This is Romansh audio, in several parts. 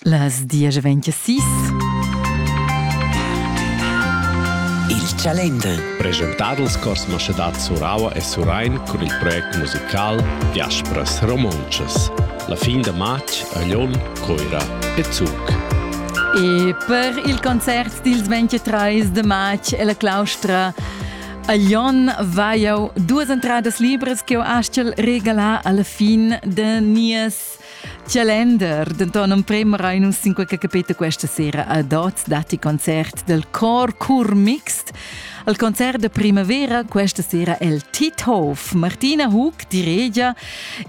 Las diesch ventisís Il Chalender Presentar dals cors Maschedad Suraua e Surain cun il project musical Diaspras Romontschas. La fin da marz a Lyon, Coira e Zug. E per il concert dils 23 de marz e la claustra A Jon va jau duas entradas libras che ho astgel regalar alla fin de nies calender. Denton en premera in un sinqua che capita questa sera a Dots dati concert del Cor Cur Mixed. Al concert de primavera questa sera el Tithof. Martina Hug, di regia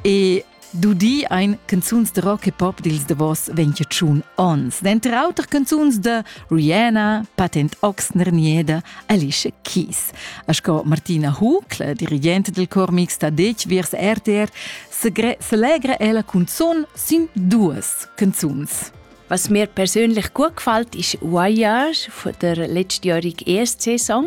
e Dudi ein canzuns de rock e pop dils davos 21 ons, denter auter canzuns de Rihanna, Patent Oxner Nieda, Alicia Keys. A sco Martina Hucl, dirigente del cor mixta dec viers RTR, selegre ella cunzun sin duas canzuns. Was mir persönlich gut gefällt, ist Voyage von der letztjährigen ersten Saison.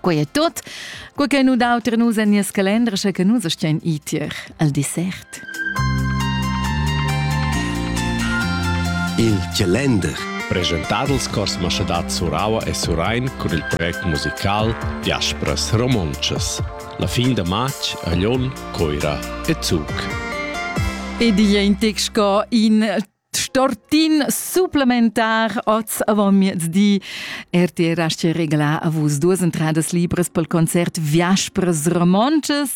Quei è tot, quei che nu dau ter nus en nies calendar, sche che nus stien itier al dessert. Il calendar presentadels cors maschadad Suraua e Surain cun il project musical Diaspras Romontschas. La fin da marz a Lyon, Coira e Zug. Ed igl è in tec sco in Stortin supplementar oz avamiezdi. RTR asce regla a vus duas entradas libres pel concert Viaspres Romonces.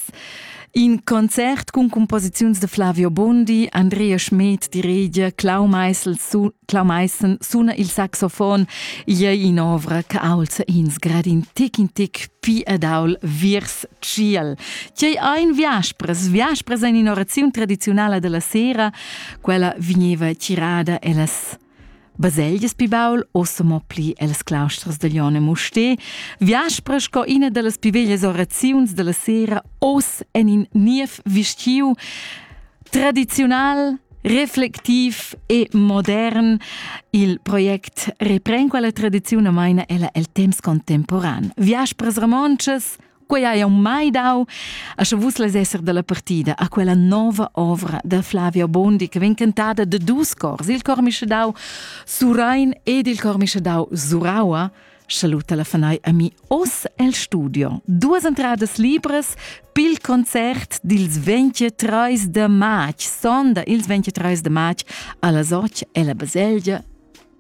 In concert cun composiziuns de Flavio Bondi, Andrea Schmed die Rede, Clau Meissel, su Clau Meissen suna il saxofon, ia in ovra che aulza ins grad in tic in tic pi ed aul viers ciel. Tgei ein viaspres? Viaspres ein in oraziun tradiziunala della sera, quella vegneva tirada ellas baselgias pi baul, ossa mo pli els clausters de Lione Muste, viaspra sco ina dallas pi veglias oraziuns della sera, os en in niev vestiu, tradizional, reflectiv e modern. Il project repren quella tradizione maina ella el temps contemporan. Viaspras romontschas, Quei hai aunc mai dau, a sche vus lez esser dalla partida a quella nova ovra da Flavia Bondi che vegn cantada de dus cors, il cor mischedau Surain ed il cor mischedau Suraua, saluta la fanai a mi oss el studio. Duas entradas libres pil concert dils 23 de march, sonda ils 23 de march, alla Soc e la Baselgia